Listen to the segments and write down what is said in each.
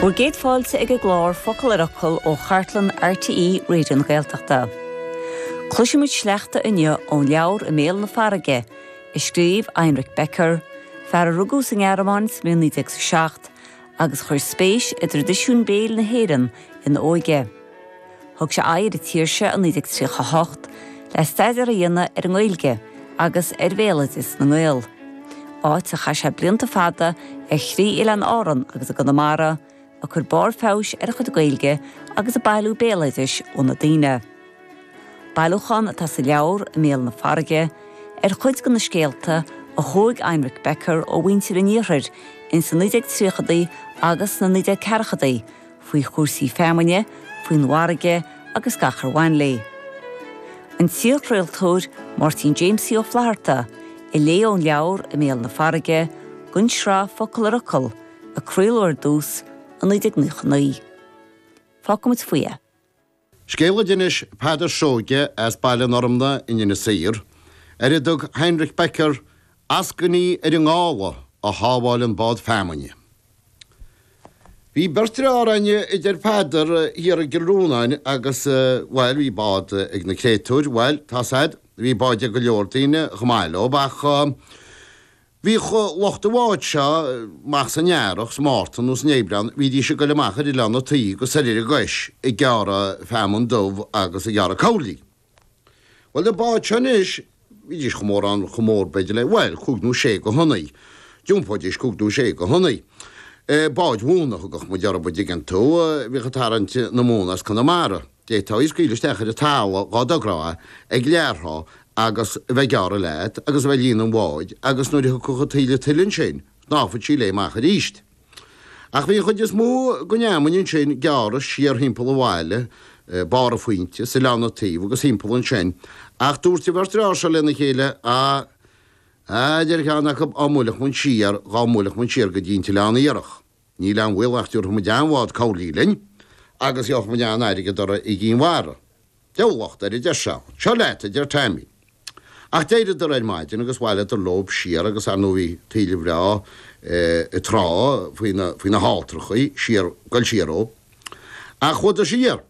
Bhur gcéad fáilte ag an gclár Focal ar Fhocal ó chartlann RTÉ Raidió na Gaeltachta. Cloisfimid sleachta inniu ón leabhar I mBéal na Farraige, a scríobh Heinrich Becker, fear a rugadh sa nGearmáin sa bhliain 1907 agus a chuir spéis i dtraidisiún béil na hÉireann ina óige. Thug sé aghaidh ar an tír seo i 1938 le staidéar a dhéanamh ar an nGaeilge agus ar bhéaloideas na nGael, áit ar chaith sé blianta fada ar thrí oileán Árann agus i gConamara, ag cur barr feabhais ar a chuid Gaeilge agus ag bailiú béaloidis ó na daoine. Bailiúchán atá sa leabhar, I mBéal na Farraige, ar chuid de na scéalta a thóg Heinrich Becker ó mhuintir an Iarthair ins na 1930idí agus sna 1940idí, faoi chúrsaí feamainne, faoin bhfarraige agus gach ar bhain léi. An t-iarchraoltóir Máirtín Jamesie Ó Flatharta a léigh ón leabhar I mBéal na Farraige, don sraith Focal ar Fhocal, a craoladh ar dtús, i 1999. Fágfaimid faoi é. Scéal a d'inis Peadar Seoige as Baile an Fhormna in Inis Oírr, ar a dtug Heinrich Becker 'eascainí ar an ngála a shábháil an bád feamainne'. Bhí beirt fhear in Árainn a deir Peadar, thiar i gCill Rónáin agus, bhuel, bhí bád ag na créatúir, bhuel, tá a fhios agat, bhí báid ag go leor daoine, chomh maith leob ach, Bhíodh lucht an bháid seo amach san Earrach, sa Mhárta nó san Aibreán, bhídís ag goil amach ar Oileán na Tuí agus soir ar an gCois, ag gearradh feamainn dubh agus ag gearradh cabhlaí. Bhuel, na báid seo anois, bhídís chomh mórán, chomh mór, b'fhéidir, le, bhuel, cúig nó sé go thonnaí. D'iompóidís cúig nó sé go thonnaí. Báid mhóna a thugadh muid orthub, an dtuigeann tú. Bhíodh ag tarraingt na móna as Conamara. d'fhéadfá í a scaoileadh isteach ar an talamh dhá dtogrófá ag lag trá agus a bheith ag gearradh leat agus a bheith ag líonadh an bháid agus nuair a thiocfadh an taoille tuile ansin, shnámhfadh sí léi amach arís. Ach bhí an chuid is mó den fheamainn ansin gearrtha siar thimpeall an bhaile, barr an phointe, is Oileán na Tuí agus thimpeall ansin, ach dúirt an bheirt fhear seo lena chéile, A, a deir ceann acu, á mbuailfeadh muid siar, dhá mbuailfeadh muid siar go dtí an tOileán Iarthach. Níl aon bhaol nach dtabharfaimid an-bhád cabhlaí linn agus gheobhaimid an-airgead orthu i gCinn Mhara. Deabhal locht air, a deir Seán. Seo leat, a deir Taimí. Ach d'éiríodar ar maidin agus bhailíodar leob siar agus ar ndóigh bhí taoille bhreá ag trá faoi na halltrachaí, siar, goil siar dhóibh. Ach chuadar siar.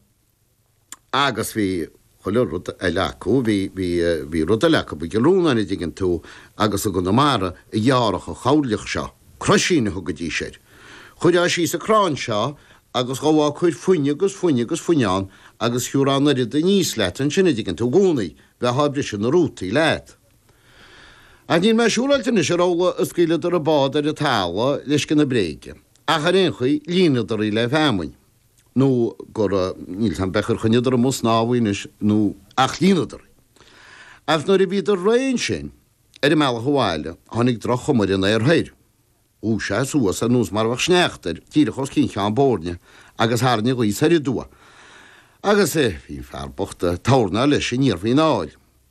Agus bhí chuile rud eile acu, bhí rud eile acu, bhí gilliún airgid an dtuigeann tú agus i gConamara a ghearradh an choirleach seo, croisín a thugaidís air. Chuirfeá síos an crann seo agus ghabhfá ag cur fuinneamh agus fuinneamh agus fuinneamh ann agus thiúrfá an oiread aníos leat ansin an dtuigeann tú i gcónaí, bheifeá ag briseadh na rútaí leat. Ach níl mé siúráilte anois ar amhlaidh a scaoileadar an bád ar an talamh le scian a bréige, ach ar aon chaoi, líonadar í le feamainn. nó go raibh, níl fhios a'm beirthe ar choinníodar amuigh ag snámh í anois nó ach líonadar í. Ach nuair a bhíodar réidh ansin, ar a mbealach abhaile, tháinig droch-chuma ar an aer thoir. Dhúisigh sé suas ar nós mar a bheadh sneachta air, díreach os cionn Cheann Boirne, agus tharraing an ghaoth soir aduaidh. Agus, bhí an fear bocht ag tornáil leis aniar faoin aill.